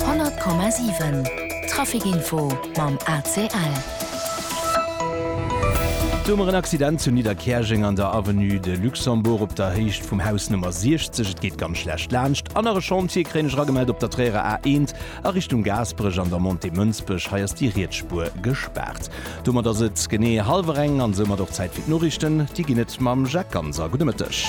Honnert Komma siwen, Trafikinfo mam ACL. Domat en Accident zu Nidderkäerjeng an der Avenue de Luxembourg op der Héicht vum Haus Nummer 60. Et geet ganz schlecht laanscht. An nach e Chantier kréien ech eragemellt op der Tréierer A1. A Richtung Gaasperech an der Montée Mënsbech, hei ass déi Rietsspuer gespaart. Domat ass et genee hallwer eng an soumat och Zäit fir d'Noriichten. Déi ginn et mam Jacques Ganser. Gudde Mëtteg.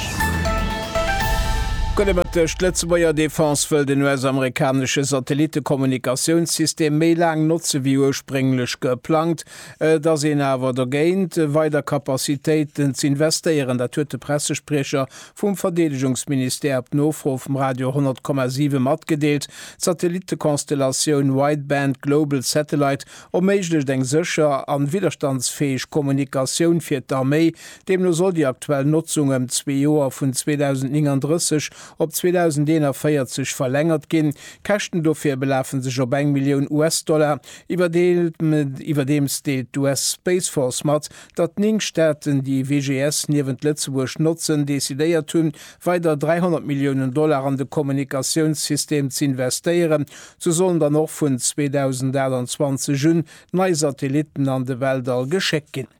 Gudde Mëtteg. D'Lëtzebuerger Defense wëll den US-amerikanesche Satellittekommunikatiounssystem méi laang notze wéi ursprénglech geplangt. Et ass een awer dogéint, weider Capacitéiten z'investéieren. Dat huet de Pressespriecher Vum Verdeedegungsministère op Nofro vum Radio 100,7 matgedeelt, D'Satellittekonstellatioun Wideband Global Satellite erméiglecht eng sécher an widderstandsfäeg Kommunikatioun fir d'Arméi. Deemno soll déi aktuell Notzung ëm zwee Joer, vun 2039 op 2041, verlängert ginn. D'Käschten dofir belafen sech op eng Millioun US-Dollar. Iwwerdeems deelt d'US Space Force mat, datt 9 Staaten, déi WGS niewent Lëtzebuerg notzen, decidéiert hunn, weider 300 Milliounen Dollar an de Kommunikatiounssystem z'investéieren. Sou sollen dann och vun 2028 un nei Satellitten an de Weltall geschéckt ginn.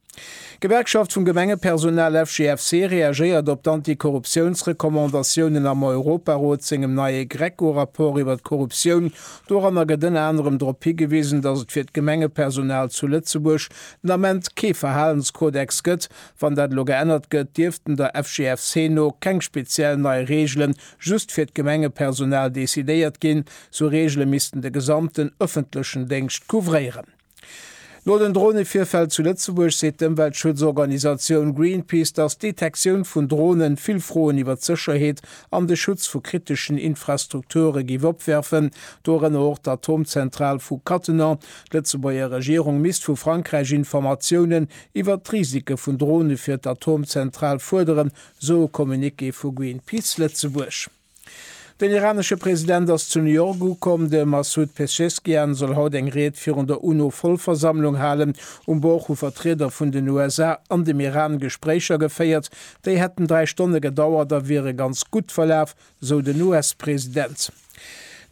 D'Gewerkschaft vum Gemengepersonal FGFC reagéiert op d'Antikorruptiounsrecommandatiounen am Europarot sengem neie GRECO-Rapport iwwer d'Korruptioun. Doranner gëtt ënner anerem drop higewisen, datt et fir d'Gemengepersonal zu Lëtzebuerg den Ament kee Verhalenskodex gëtt. Wann dat elo geännert gëtt, dierften der FGFC no keng speziell nei Reegele just fir d'Gemengepersonal decidéiert ginn. Sou Reegele missten de gesamten ëffentlechen Déngscht couvréieren. No den Dronevirfäll zu Lëtzebuerg seet d'Ëmweltschutzorganisatioun Greenpeace, datt d'Detektioun vun Drone vill Froen iwwer d'Sécherheet an de Schutz vu kriteschen Infrastrukture géif opwerfen, dorënner och d'Atomzentral vu Cattenom, D'Lëtzebuerger Regierung misst vu Frankräich Informatiounen iwwer d'Risike vun Drone fir d'Atomzentral fuerderen, sou e Communiqué vu Greenpeace Lëtzebuerg. Den iranesche President ass zu New York ukomm. De Massoud Pezeshkian soll haut eng Ried virun der UNO-Vollversammlung halen. Um Bord hu Vertrieder vun den USA an dem Iran Gespréicher geféiert. Déi hätten dräi Stonne gedauert a wiere ganz gutt verlaf, sou den US-President.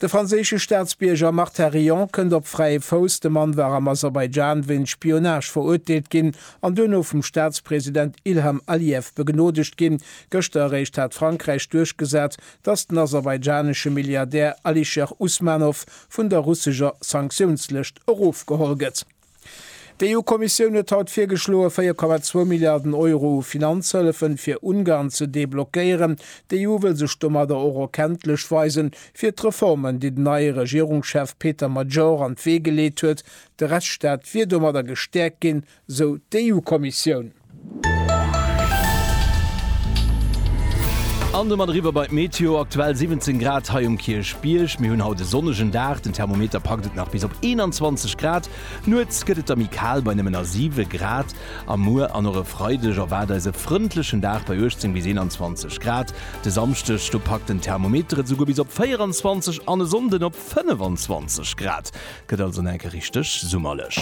De franséische Staatsbierger Martin Rion kënnt op fräie Fouss. De Mann war am Aserbaidschan wéint Spionage verurteelt ginn an duerno vum Staatspresident Ilham Aliyev begnodegt ginn. Gëschter eréischt hat Frankräich duerchgesat, datt den aserbaidschanesche Milliardär Alisher Usmanov vun der russescher Sanktiounslëscht erofgeholl gëtt. D'EU-Kommissioun huet haut virgeschloen, 4,2 Milliarden Euro u Finanzhëllefen fir Ungarn ze deblockéieren. D'EU wëll sech domadder och erkenntlech weisen, fir d'Reformen, déi den neie Regierungschef Peter Major an d'Wee geleet huet. De Rechtsstaat wier domadder gestäerkt ginn, sou d'EU-Kommissioun. An domat eriwwer bei d'Meteo. Aktuell 17 Grad hei um Kierchbierg. Mir hunn haut e sonnegen Dag, den Thermometer packt et nach bis op 21 Grad. Nuets gëtt et da méi kal bei nëmmen a 7 Grad. A muer an och e Freideg erwaart eis e frëndlechen Dag bei 18 bis 21 Grad. De Samschdeg, do packt den Thermometer et esouguer bis op 24 an e Sonnden op 25 Grad. Gëtt also nach eng Kéier richteg summerlech.